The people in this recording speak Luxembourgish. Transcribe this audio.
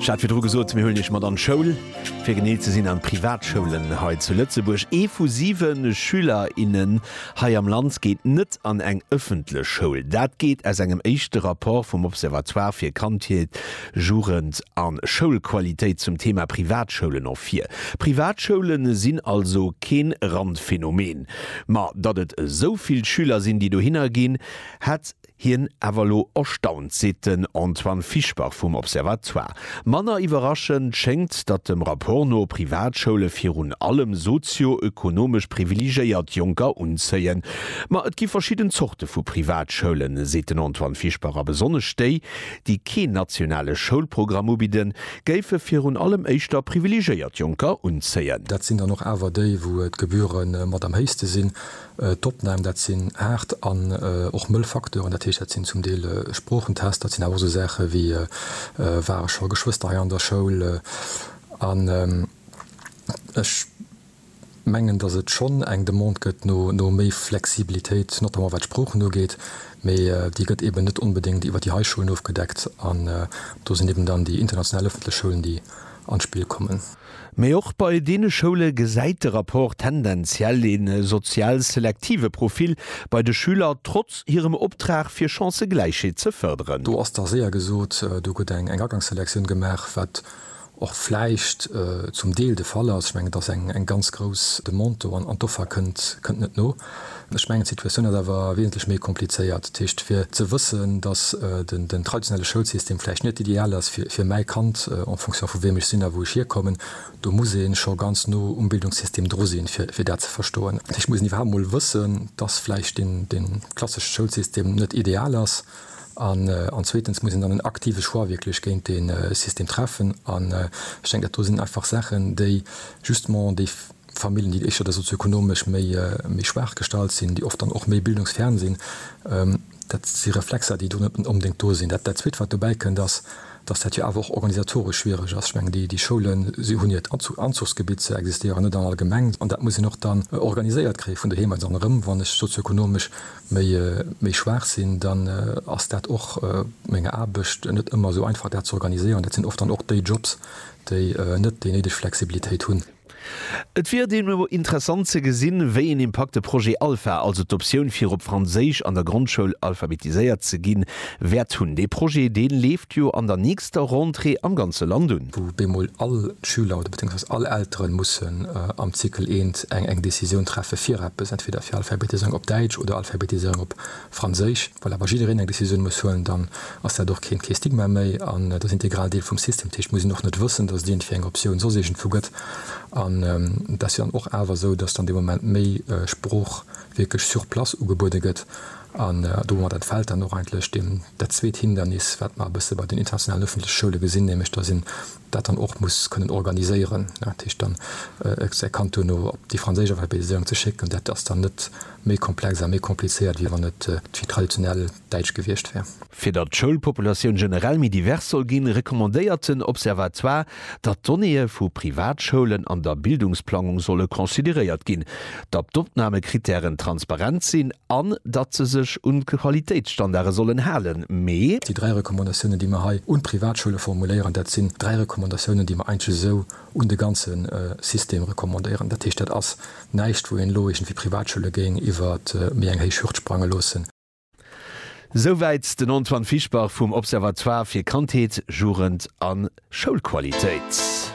Ech hat virdru gesot, mir huelen Iech mat an d'Schoul. Fir genee ze sinn an d'Privatschoulen hei zu Lëtzebuerg. Ee vu siwe Schüler, innen hei am Land geet net an eng ëffentlech Schoul. Dat geet aus engem éischte Rapport vum Observatoire fir Kandheet, Jugend a Schoulqualitéit zum Thema Privatschoulen ervir. Privatschoulen sinn also kee Randphänomen. Ma datt et esou vill Schüler sinn, déi dohinner ginn, hätt. Hien awer elo erstaunt, seet den Antoine Fischbach vum Observatoire. Manner iwwerraschend schéngt, datt dem Rapport no Privatschoule virun allem sozio-ökonomesch privilegéiert Jonker unzéien. Ma et gi verschidden Zorte vu Privatschoulen, seet den Antoine Fischbach, a besonnesch déi, déi keen nationale Schoulprogramm ubidden, géife virun allem éischter privilegéiert Jonker unzéien. Dat sinn dann och awer déi, wou d'Gebühre mat am héichste sinn. D'Opnam, dat sinn haart an och mëll Facteuren. Dat heescht, dat sinn zum Deel Sproochentest, dat sinn awer och esou Saache wéi, War ech scho Geschwëster hei an der Schoul? An ech mengen, datt et schonn eng Demande gëtt no méi Flexibilitéit, notamment wat d'Sproochen ugeet. Mee déi gëtt eeben net onbedéngt iwwer déi hei Schoulen ofgedeckt. An do sinn eeben dann déi international ëffentlech Schoulen, déi an d'Spill kommen. Mee och bei deene Schoule gesäit de Rapport tendenziell ee sozial selektive Profil bei de Schüler, trotz hirem Optrag fir Chancëgläichheet ze fërderen. Do ass da séier gesot, do gëtt eng Agangsselektioun gemaach, wat och vläicht zum Deel de Fall ass. Ech mengen, et ass eng ganz grouss Demande do an d'Offer kënnt net no. Ech mengen, d'Situatioun ass awer wesentlech méi komplizéiert. Dat heescht, fir ze wëssen, dass den traditionelle Schoulsystem vläicht net ideal ass fir mäi Kand, en fonction vu wiem ech sinn a wou ech hierkommen, do muss ee scho ganz no um Bildungssystem dru sinn, fir dat ze verstoen. Dat heescht, et muss een iwwerhaapt emol wëssen, dass vläicht dee klassesche Schoulsystem net ideal ass. An zweetens muss een dann en aktive Choix wierklech géint dee System treffen. An ech denken, dat do sinn einfach Saachen, déi justement déi Familljen, déi éischter da sozioekonomesch méi schwaach gestallt sinn, déi oft dann och méi bildungsfern sinn, dat si Reflexer, déi do net onbedéngt do sinn. Dat Zweet, wat dobäi kënnt, ass, dass dat jo awer och organisatoresch schwiereg ass. Ech mengen, déi Schoule hunn hiert Anzuchsgebitt, se existéieren net an all Gemeng, an dat muss een och dann organiséiert kréien vun doheem aus. An erëm, wann ech sozioekonomesch méi schwaach sinn, dann ass dat och menger Aarbecht net ëmmer esou einfach, dat ze organiséieren. Dat sinn oft dann och déi Jobs, déi net déi néideg Flexibilitéit hunn. Et wier deemno interessant ze gesinn, wéi een Impakt de Projet Alpha, also d'Optioun fir op Franséisch an der Grondschoul alphabetiséiert ze ginn, wäert hunn. Dee Projet, dee leeft jo an der nächster Rentrée am ganze Land un. wou bemol all d'Schüler oder beziéungsweis all Elteren mussen am Zykel I eng Décisioun treffe fir eppes, entweder fir Alphabetiséierung op Däitsch oder Alphabetiséierung op Franséisch, well awer jiddereen eng Decisioun muss huelen, dann ass dat och keen, kee Stigma méi an et ass integral Deel vum System. Dat heescht, et muss een och net wëssen, dass et iergendwéi eng Optioun soss iergendwou gëtt an et ass jo dann och awer esou, dass dann dee Moment méi Sprooch wierklech sur place ugebuede gëtt an domat entfält dann och eigentlech deem dat zweet Hindernis, wat mer e bësse bei den internationalen ëffentleche Schoule gesinn, nämlech dass een dat dann och muss kënnen organiséieren, dat heescht dann säi Kand duerno op déi franséisch Alphabetiséierung ze schécken, dat ass dann net méi komplex a méi komplizéiert, wéi wann et d'Vi traditionell Däitsch gewiescht wär. Fir datt d'Schoulpopulatioun generell méi divers soll ginn, recommandéiert den Observatoire, datt d'Donnéeë vu Privatschoulen an der Bildungsplangung solle consideréiert ginn. datt d'Opnamekrittären transparent sinn an datt se sech un d'Qualitéitsstandarde sollen halen, mee. Déi dräi Recommandatiounen, déi mer hei un d'Privatschoule formuléieren, dat sinn dräi Recommandatiounen, déi mer eigentlech esou un de ganze System recommandéieren. Dat heescht, dat ass näischt, wou een elo iergendwéi d'Privatschoule géing iwwer méi eng héich Hürd sprange loossen. Souwäit den Antoine Fischbach vum Observatoire fir Kandheet, Jugend a Schoulqualitéit.